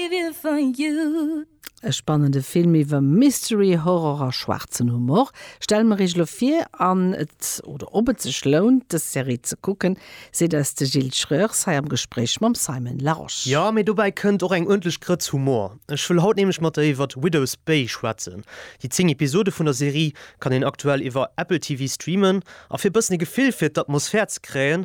behavior for you. E spannende Film iwwer Mystery, Horror a schwaarzen Humor stelle mer Iech elo vir. An et oder ob et sech lount, dës Serie ze kucken, seet eis de Gilles Schreurs hei am Gespréich mam Simon Larosche. Jo, mee dobäi kënnt och eng uerdentlech Grëtz Humor. Ech wëll haut nämlech mat der iwwer Widow's Bay schwätzen. Déi 10 Episode vun der Serie kann een aktuell iwwer Apple TV streamen. A fir e bëssen e Gefill fir d'Atmosphär ze kréien,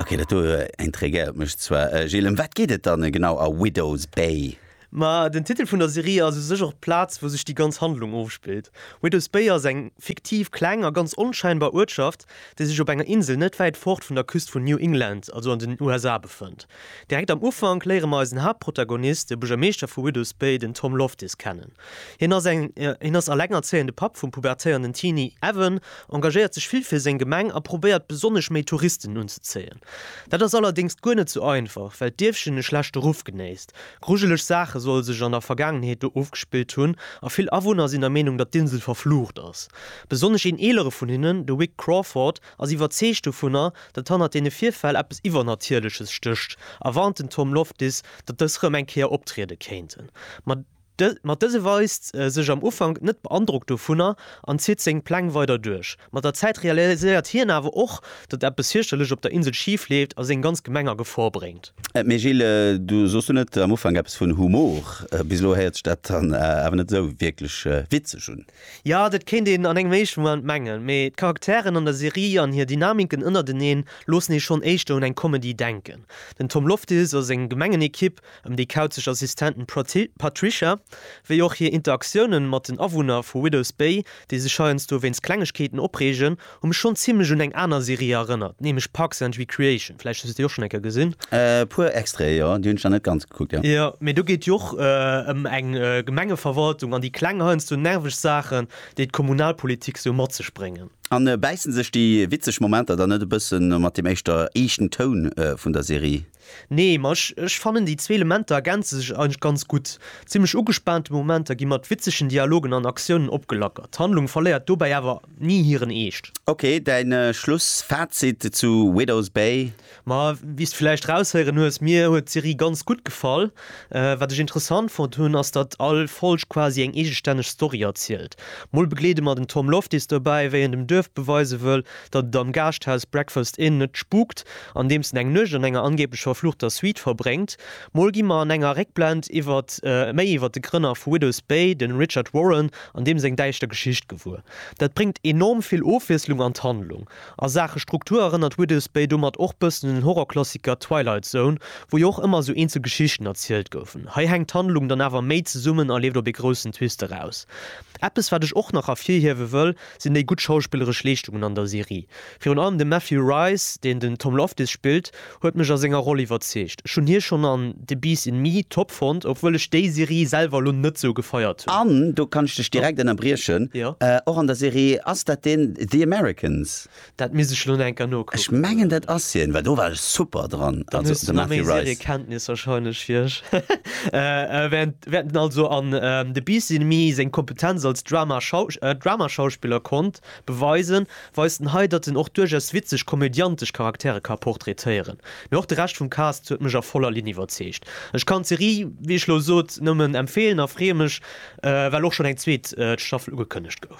Ok, dat do intriguéiert mech zwar. Gilles, ëm wat geet et dann genau a Widow's Bay? Ma den Titel vun der Serie ass u sech och d'Plaz, wou sech déi ganz Handlung ofspillt. Widow's Bay ass eng fiktiv, kleng a ganz onschäinbar Uertschaft, dee sech op enger Insel net wäit fort vun der Küst vun New England, also an den USA, befënnt. Direkt am Ufank léiere mer eisen Haaptprotagonist, de Buergermeeschter vu Widows Bay, den Tom Loftis, kennen. Hien ass eng, hien ass elengerzéiende Papp vum pubertéierenden Teenie Evan, engagéiert sech vill fir seng Gemeng a probéiert besonnesch méi Touristen unzezéien. Dat ass allerdéngs guer net sou einfach, well d'Dierfchen e schlechte Ruff genéisst. Grujeleg Saache solle sech an der Vergaangenheet do ofgespillt hunn a vill Awunner sinn der Meenung, datt d'Insel verflucht ass. Besonnesch een eelere vun hinnen, de Wick Crawford, ass iwwerzeegt dovunner, datt hannert deene Virfäll eppes Iwwernatierleches stécht a warnt den Tom Loftis, datt dës rëm eng Kéier optriede kéinten. Ma dëse weist sech am Ufank net beandrockt dovunner an zitt seng Pläng weider duerch. Mat der Zäit realiséiert hien awer och, datt eppes fierchterlech op der Insel schif leeft a seng ganz Gemeng a Gefor bréngt. Mee Gilles, du soos du net am Ufank eppes vun Humor? Bis elo héiert sech dat dann awer net esou wierklech witzeg un. Jo, dat kéint een an engem éischte Moment mengen, mee d'Charakteren an der Serie an hir Dynamiken ënnerteneen loossen ee schonn éischter un eng Comedy denken. Den Tom Loftis a seng gemengen Ekipp ëm déi kauzeg Assistentin Patricia, wéi och hir Interaktiounen mat den Awunner vu Widows Bay, déi sech heiansdo wéinst Klengegkeeten opreegen, Hu mech schonn zimlech un eng aner Serie erënnert, nämlech Parks and Recreation. Vläicht hues de déi och schonn eng Kéier gesinn? E puer Extraite, jo. Déi hunn ech nach net ganz gekuckt, jo. Jo, mee do geet et jo och ëm eng Gemengeverwaltung an déi kleng heiansdo nerveg Saachen, déi d'Kommunalpolitik sou mat sech bréngen. An bäissen sech déi witzeg Momenter dann net e bëssen mat deem éischter eeschten Toun vun der Serie? Nee, ma ech ech fannen déi zwee Elementer ergänze sech eigentlech ganz gutt. Zimmlech ugespaante Momenter gi mat witzegen Dialogen an Aktiounen opgelackert. D'Handlung verléiert dobäi awer ni hiren Eescht. Ok, däin Schlussfazit zu Widow's Bay? Ma wéi's de villäicht raushéieren hues, mir huet d'Serie ganz gutt gefall. Wat ech interessant fonnt hunn, ass datt all Folg quasi eng eegestänneg Story erzielt. Mol begleede mer den Tom Loftis dobäi, wéi en dem Duerf beweise wëll, datt et am Gaaschthaus Breakfast Inn net spukt, andeems en eng Nuecht an enger angeeblech verfluchter Suite verbréngt. Mol gi mer an enger Réckblend iwwert méi iwwert de Grënner vu Widows Bay, de Richard Warren, an deem seng däischter Geschicht gewuer. Dat bréngt enorm vill Ofwiesslung an d'Handlung. A Saache Struktur erënnert Widows Bay domat och bëssen un den Horrorklassiker Twilight Zone, wou jo och ëmmer esou eenzel Geschichten erzielt goufen. Hei hänkt d'Handlung dann awer méi zesummen a leeft op ee groussen Twist eraus. Eppes wat ech och nach ervirhiewe wëll, sinn déi gutt schauspilleresch Leeschtungen an der Serie. Virun allem de Matthew Rhys, deen den Tom Loftus spillt, huet mech a senger Roll iwwerzeegt. Ech hunn hie schonn an The Beast in Me top fonnt, obwuel ech déi Serie selwer elo net sou gefeiert hunn. An, do kann ech dech direkt ënnerbriechen, och an der Serie, ass dat deen The Americans? Dat misst ech lo enker nokucken. Ech mengen dat ass hien well do war ech super dran. Dann hues du nach méi Seriekenntnis wahrscheinlech wéi ech. Während en also an The Beast in Me seng Kompetenz als Dramaschauspiller konnt beweisen, weist en hei, datt en och duerchaus witzeg komödiantesch Charaktere ka portraitéieren. Mee och de Rescht vum Cast huet mech a voller Linn iwwerzeegt. Ech kann d'Serie, wéi ech lo sot, nëmmen empfeelen a freeë mech well och schonn eng zweet Staffel ugekënnegt gouf.